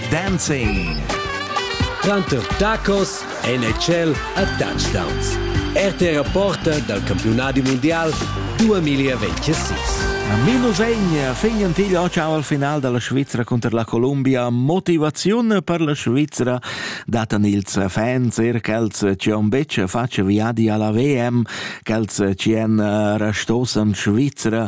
Dancing. Tranter tacos, NHL e touchdowns. RTR porta dal campiunadi mondial 2026. Minu vegn fegnan til ciao al final dalla Svizzera contro la Colombia motivaziun per la Svizzera datan ils fans er ch'els ci on betg faccia viadi alla VM, ch'els ci en restosan Svizzera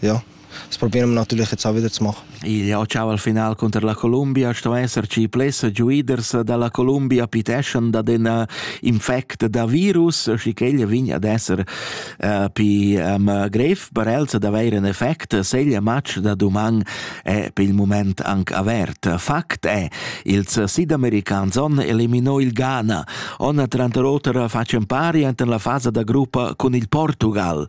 Ja, es propi natürlich jetzt auch wieder zu machen. Il occau al final cunter la Columbia sto esserci pless giuiders dalla Columbia piteschan da den infect da virus, schi ch'ella vegn ad esser uh, pi um, grev per els ad avair un effect, seglia match da duman è pel moment anc avert. Fakt è, ils sidamericans on eliminò il Ghana. On tranter oter facen pari enten la fasa da gruppa con il Portugal.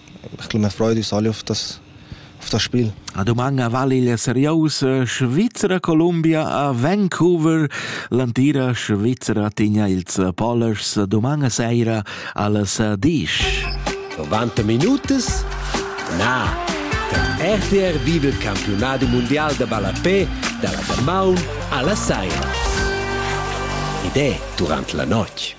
perché l'um Freud es ali auf das auf das Spiel. La dumanga val igl seriousa Svizzera Columbia a Vancouver. L'antira Svizzera tigna ils polers dumanga seira alles disch. 90 minutas? Na. Der RTR vive il campionato mondiale de ballapé dalla Damaun alla Saira. Ed è durante la notte.